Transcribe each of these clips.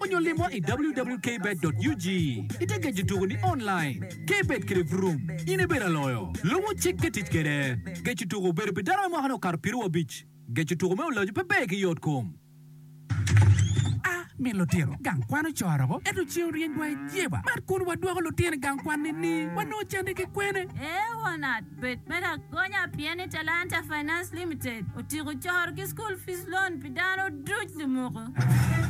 onyo limwa i wwkbet.ug ite geco tuku ni online. Kbet kede vroom in ibedo aloyo. Lubu cik ki tic kede. Geco tuku obedo pi dano me mwaka ni okato piru abic. Geco tuku me olojo pe ber ki yot kom. A. Min lutino gang kwan ocoro ko ento cing oryeny wa i jeba. Mat kun wadwoko lutino i gang kwan ni ni wanongo cande ki kwene. Eona. Bed me lagonya pien ni Talanta Finance Limited otyeko coro ki School Fees Loan pi dano duc lumoko.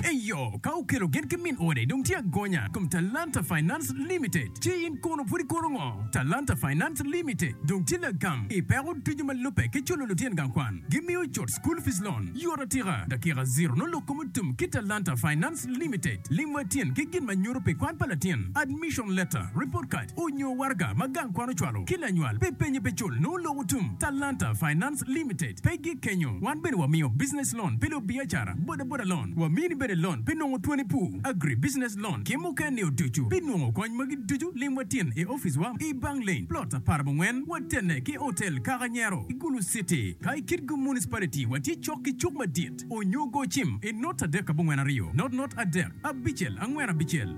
Eyo, ka okelo gen ki min ode dong tye agonya i kom Talanta Finance Limited. Ci in kono pud ikono ngo? Talanta Finance Limited dong tye lagam i peko ducu ma lubbe ki culo lutyen gang kwan. Gimiyo cut School Fees Loan yot atika, dakika ziro nongo lok kome otum ki Talanta Finance. Private Limited, lim wa tyen ki gin ma nyuto pi kwan pa latin, admission letter, report card, onyo waraga ma gang kwan ocwalo ki lanywal pi penye pe cul nongo loko tum. Talanta Finance Limited pe gik kenyo, wan bene wa miyo business loan pi lubiacara, boda boda loan, wa mini bene loan pi nongo twoni pur, agri business loan ki muken ni oducu. Pi nongo kony magi ducu lim wa tyen i office wa i Bang Lane, plot apar bo ngwen, wa tenne ki hotel Kaka Nyero, i Gulu City. Ka i Kitgum Municipality wa tye cok ki cuk madit. Onyogo cim i not adek abongwen aryo, not not adek abicel angwen abicel.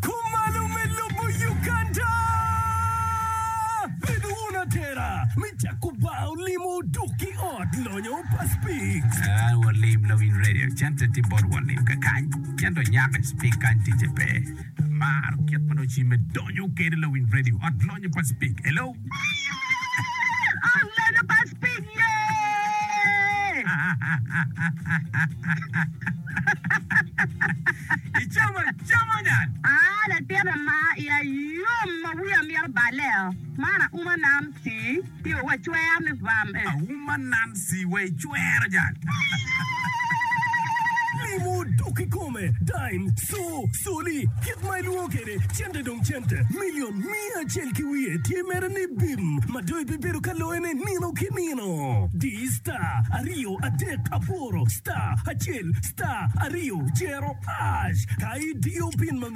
Kumalo me lobo Uganda! Bedo wun atera me cako bar olimo odok ki ot lonyo pa Speaks. An walim lawiny radio cente tye bot walim kakany cento nyaka Speak kany ticce pe. Amaro kit ma dong cimme donyo kede lawiny radio ot lonyo pa Speke. Hello. Ot lonyo pa Speke yee. Icamo acama nyat. Aa latin ama iya yom ma wiya mito balle oo. Man auma nam tii. Pi wa cwer ni bam eh. Auma Nancy wa i cwero jal. Mimo dok ikome, dime, co, coli, kit ma ilwongo kede cente dong cente, million, miya acel ki wiye tye mere ni bim ma dong ibibedo ka loye ne nino ki nino. Di star aryo adek abworo star acel star aryo cero hash ka idiyo pin ma.